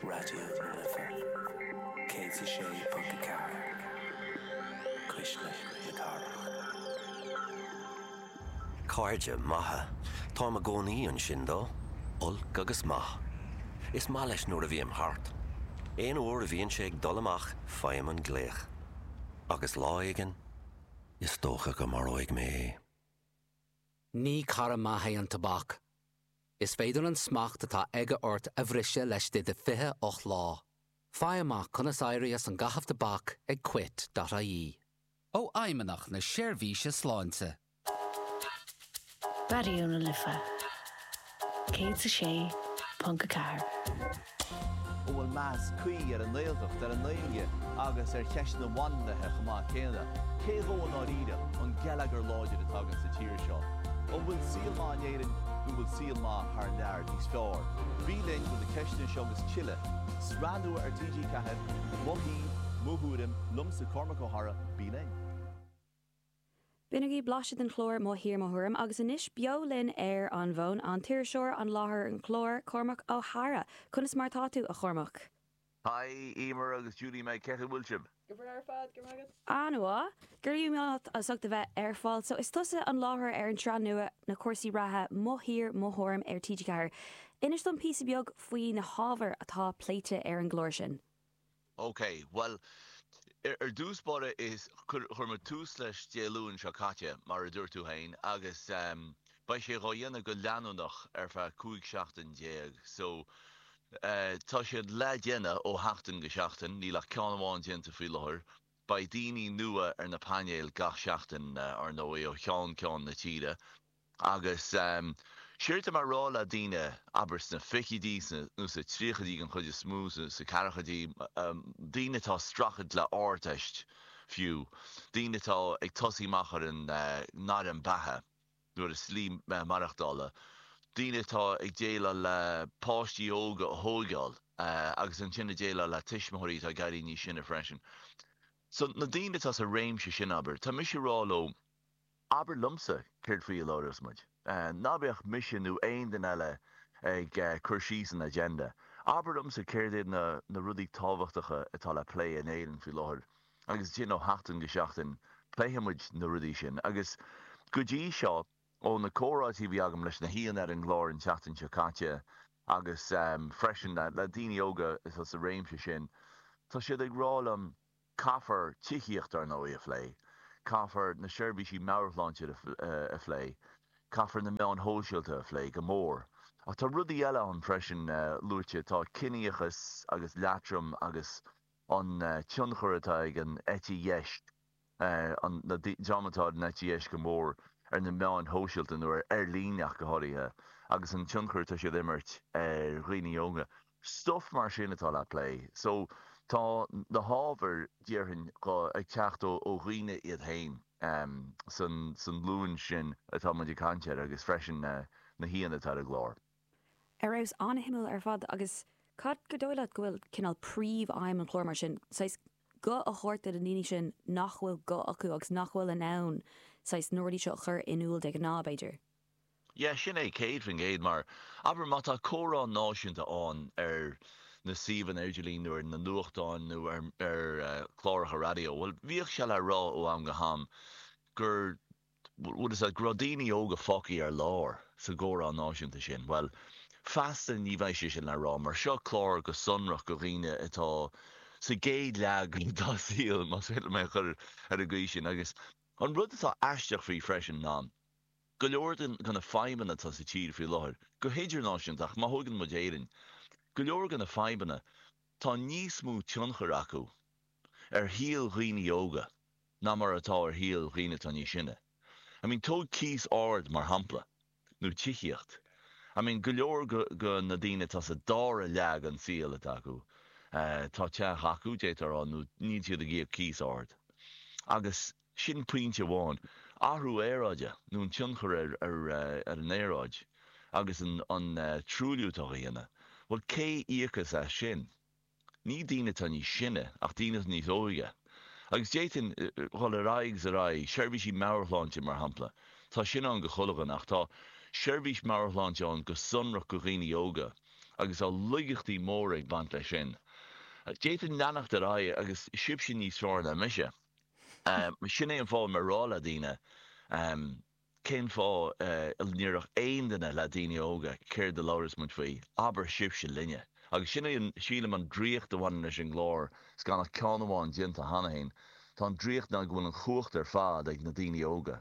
Raidió na Life 106.4, cuisle na cathrach. Cairde maithe. Táim i gcónaí ansin dó. Olc agus maith. Is maith leis nuair a bhím thart. Aon uair a bhíonn sé ag dul amach faighim an glaoch. Agus lá éigin, is dócha go maróidh mé é. Ní cara maith é an tobac. Is féidir an smacht atá aige ort a bhriseadh leis do de 28 lá. Faigh amach conas éirí as an gcaitheamh tobac ag quit dot ie. Ó Fheidhmeannacht na Seirbhíse Sláinte. Raidió na Life 106.4. An bhfuil meas cuí ar an nGaeltacht, ar an nGaeilge agus ar cheisteanna bainisteacha chomh maith céanna? Cé dhó a bhfuil i ndáiríre an geilleagar láidir atá againn sa tír seo? An bhfuil saol maith in Éirinn nó an bhfuil saol maith thar lear níos fearr? Bí linn do na ceisteanna seo agus tuilleadh, sraith nua ar TG4, Mo Thír, Mo Thuairim, liomsa Cormac Ó hEadhra, bí linn! Bainigí blaiseadh den chlár Mo Thír Mo Thuairim agus anois beo linn ar an bhfón, an t-iriseoir, láithreoir an chláir, Cormac Ó hEadhra. Conas mar atá tú, a Chormaic? Haigh, Emer agus Judy Mag, cén chaoi a bhfuil sibh? Go breá ar fad, go raibh maith agat. An-mhaith. Go raibh maith agat as ucht a bheith ar fáil. So, is tusa an láithreoir ar an tsraith nua na cúrsaí reatha Mo Thír Mo Thuairim ar TG4. Inis dom píosa beag faoi na hábhair atá pléite ar an gclár sin. OK, bhuel, ar dtús báire chuir muid tús leis Dé Luain seo caite, mar a dúirt tú féin, agus beidh sé dhá dhéanamh go leanúnach ar feadh 15 seachtain. So, tá sé le déanamh ó sheachtain go seachtain, níl ach ceann amháin déanta faoi láthair. Beidh daoine nua ar na painéil gach seachtain, ar ndóigh, ó cheann ceann na tíre. Agus séard atá mé a rá le daoine, abair sna fichidí nó sa tríochaidí den chuid is mó, sa ceathrachadí, daoine atá ag streachailt le ardtáillí fiú, daoine atá ag tosaí amach ar a ngairm beatha nó ar a slí maireachtála, daoine atá ag déileáil le páistí óga a thóigeáil agus ansin ag déileáil le tuismitheoirí atá ag éirí níos sine freisin. So na daoine atá sa réimse sin, abair, tá mise a rá leo, Abair liomsa céard faoi a labhras muid. Ná bíodh mise nó aon duine eile ag cur síos an agenda. Abair liomsa céard iad na rudaí tábhachtacha atá le plé in Éirinn faoi láthair agus ansin ó sheachtain go seachtain pléifidh muid na rudaí sin agus go dtí seo ó na comhráití a bhí agam leis na haíonna ar an gclár an tseachtain seo caite agus freisin le daoine óga atá sa réimse sin tá siad ag rá liom Caithfear tithíocht, ar ndóigh, a phlé, caithfear na seirbhísí meabhairshláinte a phlé, caithfear na meáin shóisialta a phlé go mór. Ach tá rudaí eile ann freisin luaite, tá ciníochas agus leatrom agus an tionchar atá ag an eite dheis, na dreamanna atá ar an eite dheis go mór ar na meáin shóisialta nó ar líne ach go háirithe agus an tionchar atá siad a imirt ar dhaoine óga. stuff mar sin atá le plé so tá na hábhair déarfainn go ag teacht ó ó dhaoine iad féin em san san nglúin sin atá muid ag caint air agus freisin na na haíonna atá ar an gclár. ar fheabhas an-shuimiúil ar fad agus cad is dóigh leat go bhfuil cineál príomh-aidhm an chláir mar sin saghas guth a thabhairt do na daoine sin nach bhfuil guth acu agus nach bhfuil in ann saghas na rudaí seo a chur in iúl de ghnáth b'fhéidir? Yeah, sin é, 100%. Mar, abair, má tá comhrá náisiúnta ann ar na suíomhanna idirlín nó ar na nuachtáin nó ar, ar eh, chláracha raidió, bhuel, bhíodh sé le rá ó am go ham gur, go raibh daoine óga fágtha ar lár sa gcomhrá náisiúnta sin. Bhuel, feasta ní bheidh sé sin le rá mar seo clár go sonrach do dhaoine atá sa gcéad leath dá saol, más féidir liom é a chur ar an gcaoi sin. Agus an rud atá aisteach faoi freisin ná, go leor de na fadhbanna atá sa tír faoi láthair, go hidirnáisiúnta ach má thógann muid Éirinn, go leor de na fadhbanna, tá níos mó tionchair acu ar shaol dhaoine óga ná mar atá ar shaol dhaoine atá níos sine. I mean tóg cíos ard mar shampla nó tithíocht. I mean go leor de na daoine atá sa dara leath den saol atá acu, tá teach acu, d'fhéadfá a rá, nó níl siad ag íoc cíos ard agus, Sin pointe amháin. Athrú aeráide, nó an tionchar ar an aeráid agus an truailliú atá á dhéanamh, bhuel, cé íocfas as sin? Ní daoine atá níos sine, ach daoine atá níos óige. Agus d'fhéadfainn dul ar aghaidh is ar aghaidh. Seirbhísí meabhairshláinte, mar shampla. Tá sin ann do chuile dhuine, ach tá seirbhís meabhairshláinte ann go sonrach do dhaoine óga agus tá loigeachtaí móra ag baint leis sin. D'fhéadfainn leanacht ar aghaidh, a fhios agaibhse níos fearr ná mise. Sin é an fáth má rá le daoine, Cén fáth a ndéarfadh aon duine le daoine óga, Céard a labhrós muid faoi? Abair sibhse linne. Agus sin é, sílim, an draíocht a bhaineann leis an gclár, is gan ach ceann amháin déanta cheana féin, tá an draíocht ná go bhfuil an chumhacht ar fad ag na daoine óga.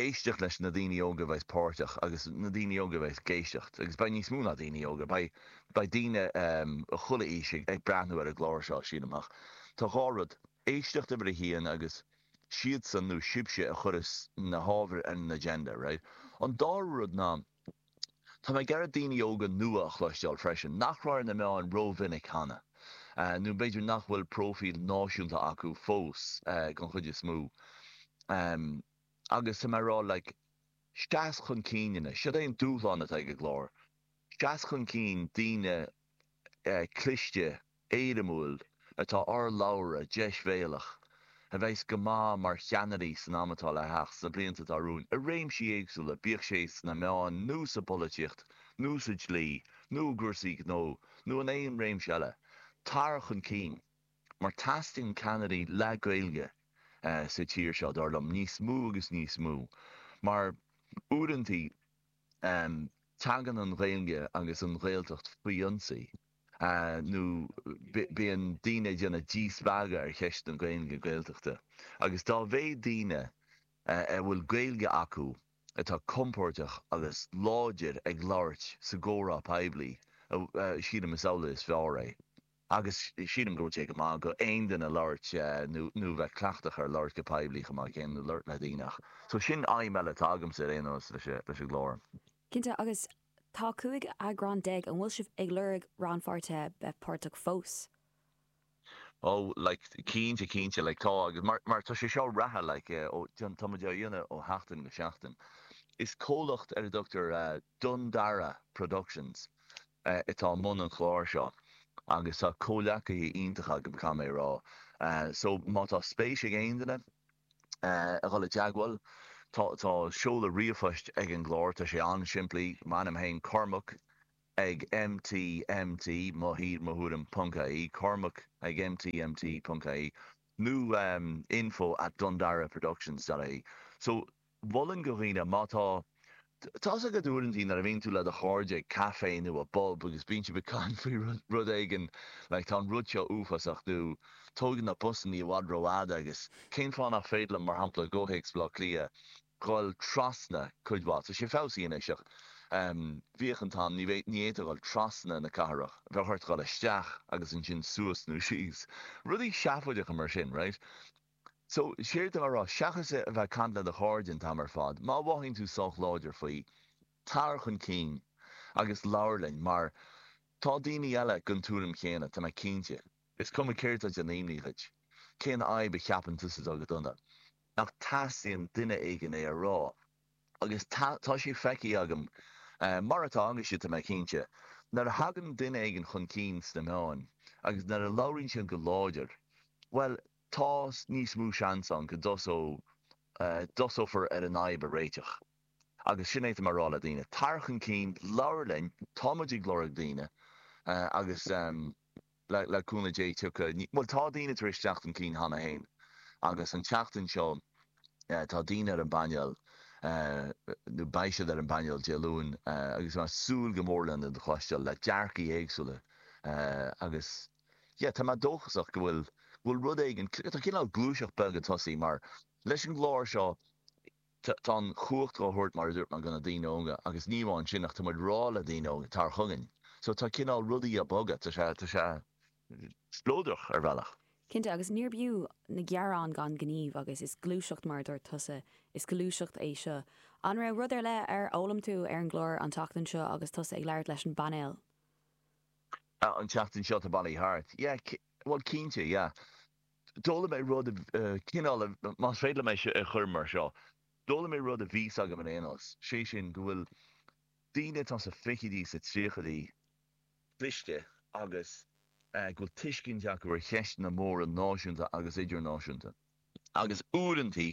éisteacht leis na daoine óga a bheas páirteach agus na daoine óga a bheas ag éisteacht agus beidh níos mó ná daoine óga, beidh daoine de chuile aois ag breathnú ar an gclár seo, sílim ach tá dhá rud, éisteacht uimhir a haon agus siadsan nó sibhse a chuirfeas na hábhair ar an agenda, right? An dara rud ná. Tá mé ag iarraidh daoine óga nua a chloisteáil freisin nach raibh ar na meáin rómhinic cheana, nó b'fhéidir nach bhfuil próifíl náisiúnta acu fós den chuid is mó. Agus tá mé ag rá, like, seas chun cinn anois, seod é an dúshlán atá ag an gclár, seas chun cinn daoine cliste, éirimiúla atá urlabhrach deisbhéalach a bheas go maith mar cheannairí san am atá le theacht, sna blianta atá romhainn, i réimsí éagsúla, bíodh sé sna meáin nó sa bpolaitíocht nó sa dlí nó i gcúrsaí gnó nó in aon réimse eile. Tar chun cinn, mar teastaíonn ceannairí le Gaeilge sa tír seo, dar liom, níos mó agus níos mó, mar uaireantaí, Tagann an Ghaeilge agus an Ghaeltacht faoi ionsaí nó bíonn daoine ag déanamh díspeagadh ar cheist na Gaeilge, Gaeltachta agus dá mhéad daoine a bhfuil Gaeilge acu atá compordach agus láidir ag labhairt sa gcomhrá poiblí, sílim, is amhlaidh is fearr é. agus sílim go bhfuil sé go maith d'aon duine labhairt nó bheith cleachtach ar labhairt go poiblí chomh maith céanna nó labhairt le daoine ach so sin aidhm eile atá agamsa ar aon nós leis an gclár. Cinnte, agus tá cúig eagrán déag, an bhfuil sibh ag lorg rannpháirtithe bheith páirteach fós? Oh like cinnte cinnte like tá agus mar mar tá sé seo reatha like ó tá muid á dhéanamh ó sheachtain go seachtain. Is comhlacht ar a dtugtar Dundara Productions atá i mbun an chláir seo agus tá comhleacaithe iontacha agam, caithfidh mé a rá. So, má tá spéis ag aon duine a dhul i dteagmháil, tá seoladh ríomhphoist ag an gclár, tá sé an-simplí, m'ainm féin, Cormac ag MT, MT, mo thír, mo thuairim, ponc IE, Cormac ag MT, MT, ponc IE, nó info at dundaraproductions dot IE. So. mholfainn do dhaoine, má tá, tá's agat uaireantaí nuair a bhíonn tú le do chairde ag caife nó i bpub agus bíonn sibh ag caint faoi rud, rud éigin like tá an rud seo uafásach nó tógann na busanna i bhfad rófhada agus cén fáth nach féidir liom, mar shampla, i gcomhthéacs Bhaile Átha Cliath, dhul trasna cuir i gcás, tá sé fabhsaí anois ach em bhíodh an t-am, ní bheidh, ní fhéadfá dhul trasna na cathrach, bheadh ort dhul isteach agus ansin suas nó síos, rudaí seafóideacha mar sin, right? So, séard atá mé a rá? Seachas a bheith ag caint le do chairde an t-am ar fad, má mhothaíonn tú sách láidir faoi, tar chun cinn agus labhair linn mar tá daoine eile den tuairim chéanna, tá mé cinnte. Is cuma céard atá ag déanamh imní dhuit, cén fhadhb a cheapann tusa atá go dona, ach teastaíonn duine éigin é a rá agus tá, tá sé feicthe agam mar atá agaibhse, tá mé cinnte. Nuair a thagann duine éigin chun cinn sna meáin agus nuair a labhraíonn siad go láidir, bhuel, tá níos mó seans ann go dtosófar ar an fhadhb a réiteach. Agus sin é atáim a rá le daoine. Tar chun cinn, labhair linn, tá muid ag lorg daoine agus le cúnamh Dé tiocfaidh, bhuel tá daoine tar éis teacht chun cinn cheana féin agus an tseachtain seo tá daoine ar an bpainéal, nó beidh siad ar an bpainéal Dé Luain agus táim ag súil go mór lena gcloisteáil le dearcaidh éagsúla agus. yeah, tá mé dóchasach go bhfuil, go bhfuil rud éigin, tá cineál gluaiseacht bheag ag tosaí mar leis an gclár seo tá, tá an chumhacht dhá thabhairt mar a dúirt mé do na daoine óga agus ní amháin sin ach tá muid rá le daoine óga tar chugainn so tá cineál rudaí a' bogadh, tá sé, tá sé spleodrach ar bhealach. Cinnte agus níorb fhiú na gearáin gan gníomh agus is gluaiseacht mar a dúirt tusa, is gluaiseacht é seo. An raibh rud ar leith ar fhoghlaim tú ar an gclár an tseachtain seo agus tusa ag labhairt leis an bpainéal? Ah, an tseachtain seo atá bailithe thart. Yeah, bhuel cinnte, yeah. D'fhoghlaim mé rud, cineál, más féidir liom é seo a chur mar seo, d'fhoghlaim mé rud a bhí a fhios agam ar aon nós, sé sin go bhfuil daoine atá sna fichidí, sna tríochaidí cliste agus go bhfuil tuiscint acu ar cheisteanna móra náisiúnta agus idirnáisiúnta agus uaireantaí,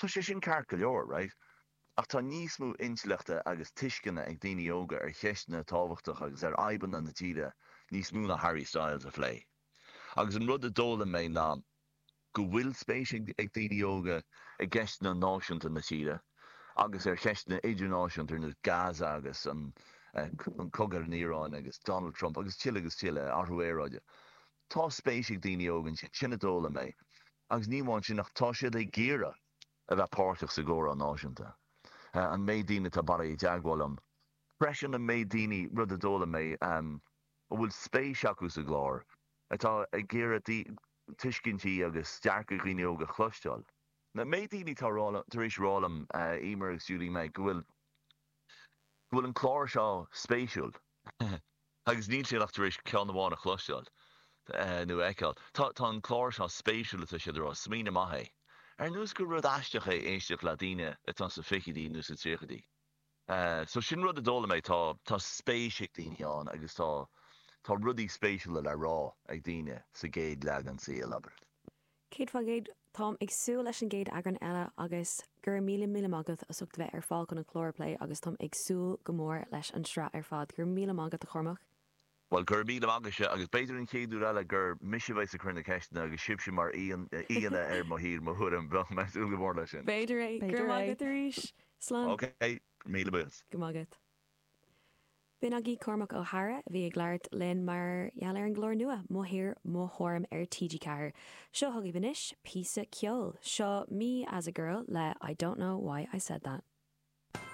Tá sé sin ceart go leor, right? Ach tá níos mó intleachta agus tuisceana ag daoine óga ar cheisteanna tábhachtacha agus ar fhadhbanna na tíre, níos mó ná Harry Styles, a phlé. Agus an rud a d'fhoghlaim mé ná go bhfuil spéis ag daoine óga i gceisteanna náisiúnta na tíre agus ar cheisteanna idirnáisiúnta ar nós Gaza agus an cogadh san Iaráin agus Donald Trump agus tuilleadh agus tuilleadh, athrú aeráide. Tá spéis ag daoine óga iontu sin. Sin a d'fhoghlaim mé. Agus ní amháin sin ach tá siad ag iarraidh a bheith páirteach sa gcomhrá náisiúnta. An méid daoine atá bailithe i dteagmháil liom freisin, an méid daoine, rud a d'fhoghlaim mé, a bhfuil spéis acu sa gclár, atá ag iarraidh tuiscintí agus dearcaidh dhaoine óga a chloisteáil. An méid daoine atá tar éis rá liom, Emer agus Julie Meg, go bhfuil an clár seo spéisiúil. agus níl siad ach tar éis ceann amháin a chloisteáil nó a fheiceáil. Tá an clár seo spéisiúil, atá siad ag rá. Smaoineamh maith é. Ar nós gur rud aisteach é éisteacht le daoine atá sna fichidí nó sna tríochaidí. So sin rud a d'fhoghlaim mé, tá spéis ag daoine ann agus tá rudaí spéisiúla le rá ag daoine sa gcatagóir aoise sin le labhairt. 100%, táim ag súil leis an gcéad eagrán eile agus go raibh míle míle maith agat as ucht a bheith ar fáil chun an clár a phlé agus táim ag súil go mór leis an sraith ar fad. Go raibh míle maith agat a Chormac. Bhuel, go raibh míle agaibhse agus b'fhéidir an chéad uair eile gur mise a bheas ag cur na ceisteanna agus sibhse mar aíonna ar Mo Thír, Mo Thuairim, bheadh mé ag súil go mór leis sin. B'fhéidir é. Go raibh maith agat arís. Slán. OK, míle buíochas. Go raibh maith agat. B'in agaibh Cormac Ó hEadhra a bhí ag labhairt linn mar gheall ar an gclár nua Mo Thír, Mo Thuairim ar TG4. Seo chugaibh anois píosa ceoil. Seo Me as a Girl le I Don't Know Why I Said That.